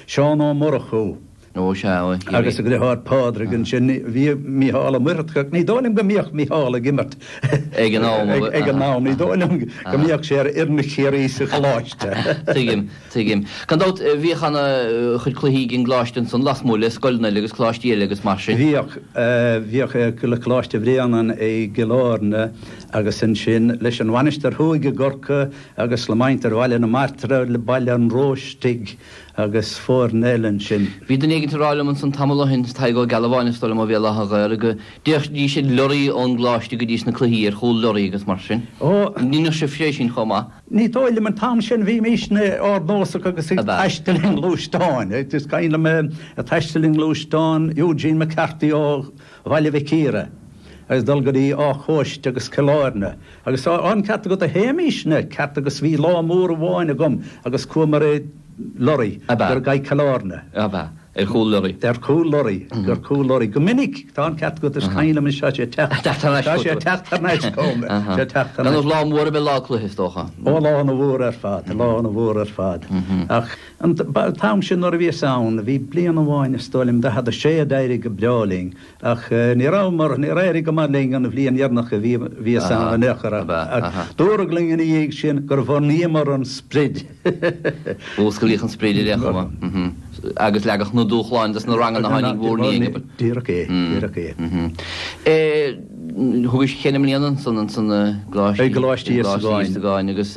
Seán Ó Murchadha agus a dhriotháir Pádraig ansin. Bhí Mícheál Ó Muircheartaigh, ní dóigh liom go mbíodh Mícheál ag imirt ag an, ag an am, ní dóigh liom go mbíodh sé ar fhoireann Chiarraí sa Choláiste.. Tuigim, tuigim. Gan dabht bhíodh ana chuid cluichí ag an gColáiste ansan lasmuigh le scoileanna eile agus Coláistí eile agus mar sin. Bhíodh, bhíodh le Coláiste Bhréanainn i gCill Airne agus ansin leis an Mhainistir Thuaidh i gCorcaigh, agus le muintir Bhaile na Martra, le Baile an Róistigh agus foirne eile ansin. Bhí duine éigin ag rá liom ansan tamall ó shin, Tadhg Ó Gealbháin is dóigh liom a bhí i láthair, go dtéidís ag lorraí ón gcoláiste go dtí sna cluichí, ar chúl lorraí agus mar sin. Dheineadh sibh é sin chomh maith? Ní dóigh liom, an t-am sin bhímís ardnósach agus ag taisteal i ngluaisteáin. Is cuimhin liom taisteal i ngluaisteán Eugene McCarthy ó. Bhaile Mhic Íre, agus dul go dtí Áth Chóiste agus Cill Airne, agus tá an ceart agat a Shéamuis, an ceart agat bhí lá mór amháin agam agus chuamar i lorry Ab ea? go dtí Cill Airne. Ab ea? Ar chúl lorry? Ar chúl lorry, ar chúl lorry, go minic, tá an ceart agat is cuimhin liom is tá sé teacht, Teacht thar n-ais tá sé chugat. teacht thar n-ais chugam, Aha. sé teacht thar n-ais. Ba lá mór ab ea lá cluiche is dócha. Ó lá ana mhór ar fad, lá ana mhór ar fad. Ach An t-am sin nuair a bhíos ann, bhí bliain amháin, is dóigh liom, 46 a d'éirigh go breá linn, ach ní rabhamar, níor éirigh go maith linn an bhliain dheireanach a bhíos ann in aon chor, ach dúradh linn ina dhiaidh sin gur bhunaíomar an sprid. Músclaíodh an sprid ar aon chuma agus leagadh na dúshláin dos na ranganna a tháinig in bhur ndiaidh. Díreach é, díreach é. Thugais cheithre mbliana ansan sa gColáiste Íosagáin agus.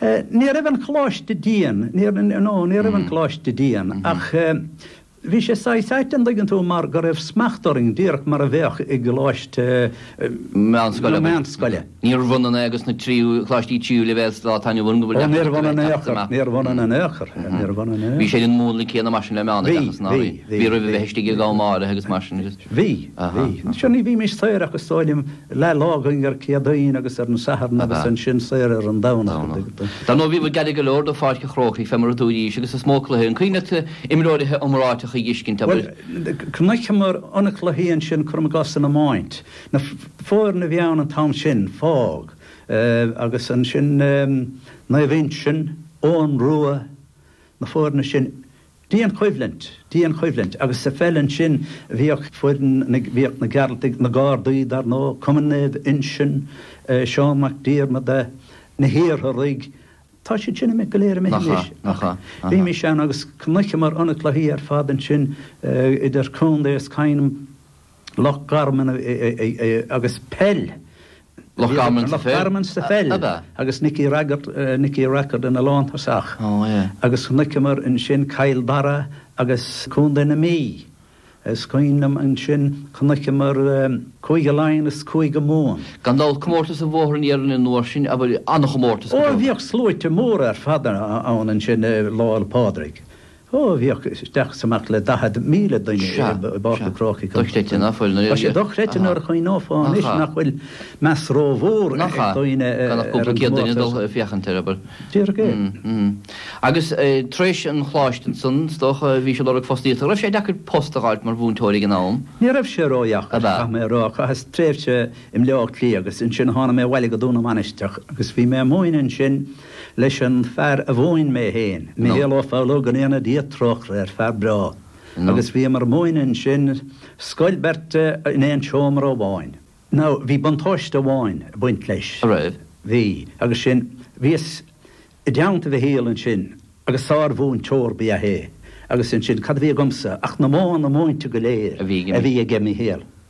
Ní raibh an choláiste dian, nó ní raibh an Coláiste dian, ach bhí sé saghas ait, an dtuigeann tú, mar go raibh smacht orainn, díreach mar a bheadh i gcoláiste nó meánscoil. Níorbh ionann é agus na tríú Coláistí tríú leibhéal sa lá atá inniu ann go bhfuil deacracht a bheith ag teacht amach. Níorbh ionann in aon chor, níorbh ionann in aon chor. Bhí sé den mhúnla céanna mar sin le meán a bheadh, ná bhí? Bhí oraibh a bheith istigh ag am áirithe agus mar sin. Bhí, bhí. Sure, ní bhímis saor ach is dóigh liom. Leathlá againn ar an gCéadaoin agus ar an Satharn agus ansin saor ar an Domhnach. Dar ndóigh bhíobhair gairid go leor do Pháirc an Chrócaigh fé mar a dúrais agus is mó cluiche an cuimhin leat imreoirí iomráiteacha a dh'fhiscint abair? Bhuel chonaiceamar ana cluichí ansin cuirim i gcás san iomáint. Na foirne a bhí ann an t-am sin, Faughs, agus ansin Naomh Uinsionn, Eoghan Rua, na foirne sin, Dianchoimhlint, dianchoimhlint, agus sa pheil ansin bhíodh foireann na, bhíodh na Gearaltaigh, na Gardaí dar ndóigh, Cumann Naomh Uinseann, Seán Mac Diarmada, na hIartharaigh, tá siad sin go léir imithe anois. Imithe, imithe. Bhímis ann agus chonaiceamar na cluichí ar fad ansin idir contae is Loch Garman sa pheil. Loch Garman sa pheil. Loch Garman sa pheil. Ab ea? Agus Nicky Rackard, Nicky Rackard ina lántosach. Ó, sea. Agus chonaiceamar ansin Cill Dara agus Contae na Mí. Is cuimhin liom ansin, chonaiceamar Cúige Laighean is Cúige Mumhan. Gan dabht, comórtas an Bhóthair Iarainn an uair sin, ab ea? An-chomórtas, go deimhin. Ó, bhíodh sluaite móra ar fad ann ansin Lá 'le Pádraig. Ó bhíodh isteach is amach le 40,000 duine i bPáirc an Chrócaigh an uair sin. Tá sé dochreidte nuair a chuimhneofá anois nach bhfuil meas rómhór ag daoine ar an gcomórtas. Déarfainn é. Agus tar éis an choláiste ansan, is dócha, bhí siad ag lorg fostaíochta. An raibh sé deacair post a fháil mar mhúinteoir ag an am? Ní raibh sé ródheacair, caithfidh mé a rá. Chaitheas tréimhse i mBleá Cliath agus ansin tháinig mé abhaile go Dún na Mainistreach agus bhí mé ag múineadh ansin. leis an fear a mhúin mé féin, Micheál Ó Foghlú, go ndéana Dia trócaire air, fear breá, agus bhíomar ag múineadh ansin, scoil beirte in aon seomra amháin. Now, bhí buntáiste amháin ag baint leis. An raibh? Bhí, agus sin, bhíos i dteannta Mhichíl ansin agus sármhúinteoir ba ea é agus ansin cad a bhí agamsa ach na modhanna múinte go léir a bhí ag Micheál.